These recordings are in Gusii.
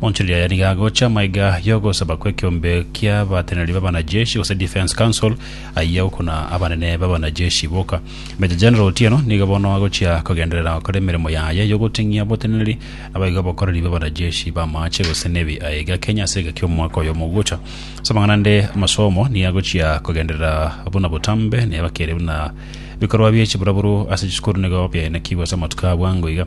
Montilia yarigia agocha maiga y'ogosaba kw'ekeombe ki'abateneneri b'abanajeshi, gose Defence Council, ayia gokuna abanene b'abanajeshi boka. Major General Otieno nigo bono agochia kogenderera gokora emeremo yaye y'ogoting'ia oboteneneri naboigo obokoreri bw'abanajeshi b'amaache gose Navy aye iga Kenya ase egeka ki'omwaka oyo omogocha. Ase amang'ana ande, amasomo nigo agochia kogenderera buna botambe, neba kere buna bikorwa bie chiburaburu ase chisukuru nigo biaenekigwe ase amatuko a bwango iga.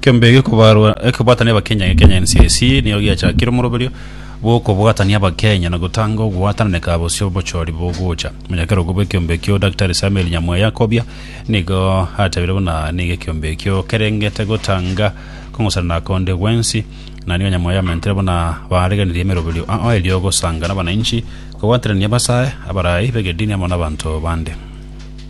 Kembe eke gekobarwa ekebwatani abakenya ge Kenya NCIC nigo giachakire omoroberio bw'okobwatania abakenya na gotanga ogwatananeka aa bosio bochori bogocha. Omonyakerogo bw'ekeombe ekio Daktari Samuel Nyamweya Kobia nigo atebeire buna nigo ekeombe ekio kerengete gotanga kong'osana na konde gwensi na nigo Nyamweya amentire buna baariganirie emeroberio ao erio gosanga nabananchi kobwaterania abasae, abarai b'egedini amo nabanto bande.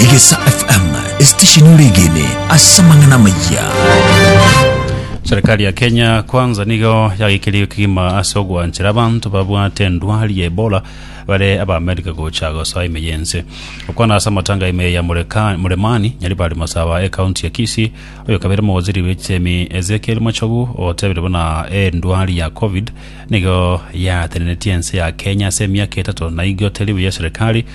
Egesa FM, esitesheni oregene ase amang'ana amayia. Serikali ya Kenya kwanza nigo yagekerie kigima ase ogwanchera abanto babwate endwari ya Ebola bare aba America gocha gosoa ime yense okwana ase amatanga ime ya Mureka- Muremani Nyaribari Masaba e county ya Kisii oyo kabere mowaziri w'echemi Ezekiel Machogu otebire buna endwari ya covid nigo yatenenetie ense ya Kenya ase emiaka etato na igo teri buya serikali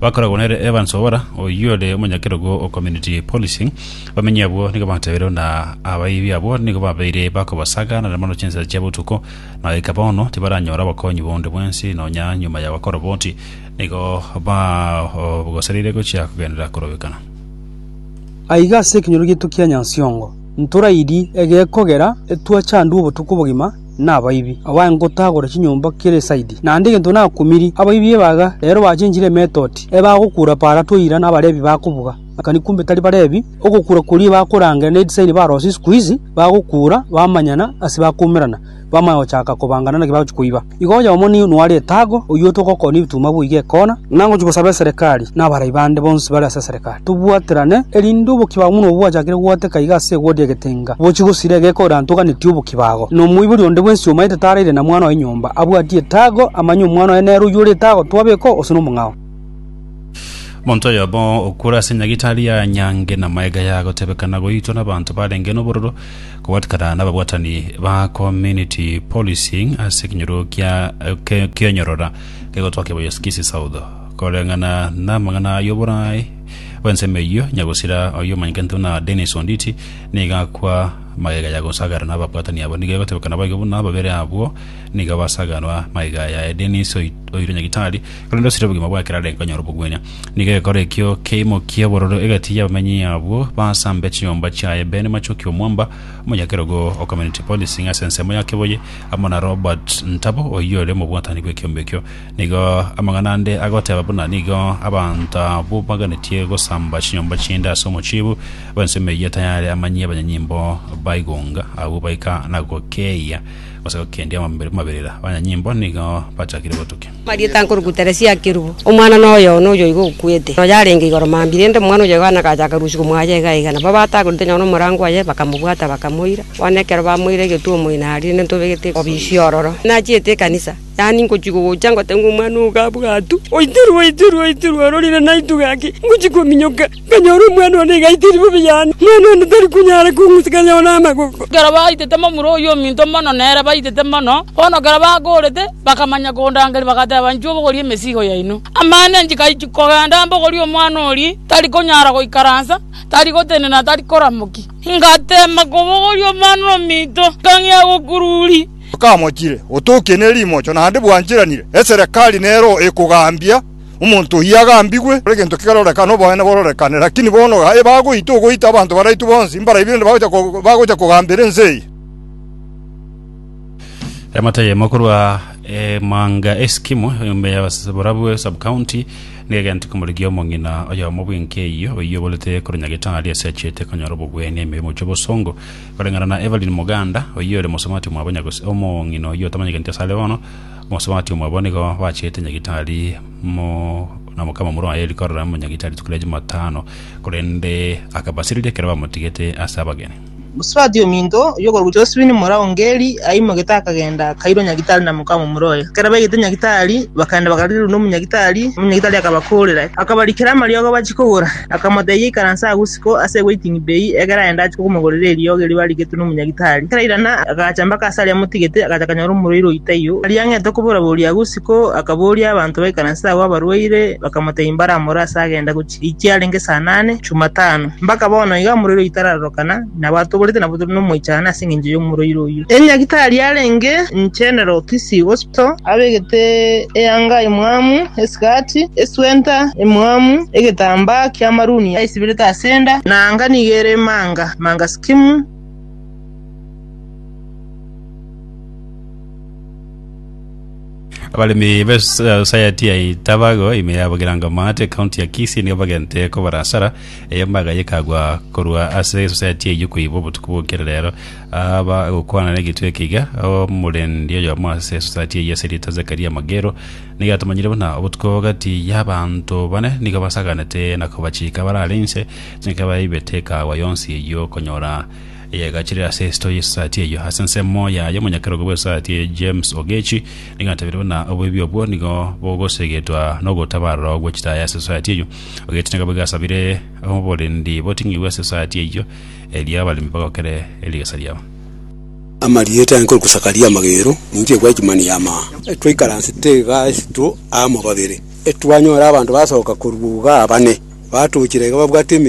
Bakoragwa nere Evans Obora, oyio ore omonyakerogo o Community Policing. Abamenyi abwo nigo batebeire buna abaibi abwo nigo babeire bakobasaga nare mono chinsa chia botuko, na goika bono tibaranyora obokonyi bonde bwensi nonya nyuma ya bakoroboti nigo bagosereire gochia kogenderera korobekana. Aiga ase ekenyoro giaito kia Nyansiongo, ntorairie egekogera etwachandwe obotuko obogima, nabaibi, abae ngotagora chinyomba kera esaidi. Naende egento nakumirie abaibi ebaga, rero bachenchire emetoti, ebagokura para toira nabarebi bakobuga. Akani kumbe tari barebi, ogokura koria bakorangera ne edisaini barose isiko izi, bagokura bamanyana ase bakoumerana, bamanya gochaka kobangana naki bagochia koiba. Igo oyo omo nigo noare etago, oyio otogokora nebituma boigo ekona. Inangochia gosaba eserekari, nabarai bande bonsi bare ase eserekari. Tobwaterane, erinde obokia bwabo buna obwachakire goateka iga ase egodia egetenga, bochie gosira egeka ore antoganetie obokia bago. Na omoibori onde bwensi omaete taraire na mwana oye nyomba, abwatie etago, amanye omwana oye nere oyio ore etago, twabekwa gose nomong'ao. Monto oyomo okure ase nyagitari ya nyangi na maega ya gotebekana goitwa nabanto barenge nobororo, kobwatikana nababwatani ba community policing ase ekenyoro kia kionyorora kegotwa Kiboyoskisi South. Koreng'ana n'amang'ana y'oboraai bw'ensemo eyio, nyagusira oyio omanyete ntuna Dennis Onditi nigo akwa magega ya gosagara n'ababwatani abo. Nigo egotebeka naboigo buna babere abwo nigo basaganwa magega yaye Dennis oirwe nyagitari korende osire obogima bwa ekero arenge konyora obogwenia. Nigo egekora ekio keimokia obororo egati y'abamenyi abwo basambe chinyomba chiaye Ben Machoki Omwamba omonyakerogo o Community Policing ase ensemo ya Keboye amo na Robert Ntabo oyio ore omobwatani bw'ekiombe ekio. Nigo amang'ana ande agoteba buna nigo abanto abwo baganetie gosamba chinyomba chi'ende ase omochibu bw'ensemo eyio tayare amanyie abanyanyimbo baigonga abwo baika na gokeeia gose gokendia amabere- amaberera. Abanyanyimbo nigo bachakire gotukia. Marieta nkoruku Teresia akerubu, omwana noyo one oyoigo okwete. Noyo arenge igoro mambia, rende omwana oyo yohana agachaka rusiku mwaye iga iga. Nabo batagorete nonya nomorango oye, bakamobwata, bakamoira. Bono ekero bamoire egetuo moino aria, rende ntobegete obisi ororo. Nachiete ekanisa. Yaani ngochia gogocha ngote ng'a omwana oo gabwatwe, oitirwe, oitirwe, oitirwe, ororire naintwe gaki, ngochia kominyoka, nkanyora omwana one iga aitire bobe yane, omwana one tari konyara kong'usa kanyore namagogo. Ekero baitete momura oyio ominto mono nere baitete mono, bono ekero bagoorete, bakamanya kondangeria, bagateba, Inchuo bogoria emesigo yaino. Amaene nchigaichia kogenda mbogorie omwana oria, tari konyara goikaransa, tari gotenena, tari koramokia. Ngatema kobogoria omwana ominto, nkang'ea gokururia. Bakamochire, Otokie ne rimocho, naende bwancheranire. Eserekari nero ekogambia omonto oyio agambigwe, egento kerorekane, oboene bororekane. Lakini bono gaye bagoita ogoita abanto baraitwe bonsi, mbaraibire nde bagocha kogambera ense eye. Emate eyemo korwa emanga Eskimo enyomba ya Borabue Sub-County nigo egentete komorigia omong'ina oyomo bw'enka eyio, oyio oborete korenya gitari ase achiete konyora obogwenia ime y'omochie bw'osongo. Koreng'ana na Evelyn Moganda, oyio ore mosubati omwabo nyagose omong'ina oyio otamanyekaneti ase are bono, omosubati omwabo nigo bachete nyagitari mo na mokamamura oye Eric korora omonyagitari rituko ria Jumatano, korende akabasireria ekero bamotigete ase abageni. Mosubati ominto oyio okorokwa Josephine Mora Ongeri aimogete akagenda akairwa nyagitari na mokamamura oye. Ekero baigete nyagitari, bakagenda bakarigererwa nomonyagitari, omonyagitari akabakorera, akabarikera amariogo bachie kogora. Akamotebia, Ikaranse agwo isiko ase ewaiting bay, egera aende ache kokomogorera eriogi erio barigetwe nomonyagitari. Ekero airana, agacha mpaka ase aria amotigete, agacha akanyora omorwaire oyio taiyo. Aria ang'ete okobora-boria agwo isiko, akaboria abanto baikaranse agwo abarwaire, bakamotebia mbaramore ase agenda gochia eki arenge saa nane, Chumatano. Mpaka bono iga omorwaire oyio tararorokana, nabo atoborete nabo tore nomoichano ase engencho y'omorwaire oyio. Enyagitari arenge General Kisii Hospital. Kristo, abegete eanga emwamu, esikati, eswenta emwamu, egetambaa ki'amaruni aisibirete ase enda, na anga nigo ere manga manga sikimu. Abaremi b'esayati ya Itabago, ime ya Bugeranga-Maate, ekaunti ya Kisii nigo bagente kobara asara eye mbaga ye ekagwa korwa ase esosayati eyio koibwa obotuko bwa ekero rero. Aba egokwana negetwe ekiga, omorendi oyomo ase esosayati eyio ase rieta Zekaria Magero nigo atomanyire buna obotuko gati y'abanto bane nigo basaganete na kobachika bare are inse, chinka baibete ekaagwa yonsi eyio konyora eyegachire ase esito y'esosayati eyio. Ase ensemo yaye omonyakerogo bw'esosayati eye James Ogechi nigo atebirie buna oboibi obwo nigo bogosegetwa nogotabarora gwe chitaya ase esosayati eyio. Ogechi nigo boigo asabire oborendi boting'igwe ase esosayati eyio erio abaremi bagokere erigesa riabo. Amarieta yange korokwa Zakaria amagero, ninche Watchman ya maa. Twaikaransete igaa isiko amo babere, twanyora abanto basoka korwa igaa bane, batochire iga babwate emeyio.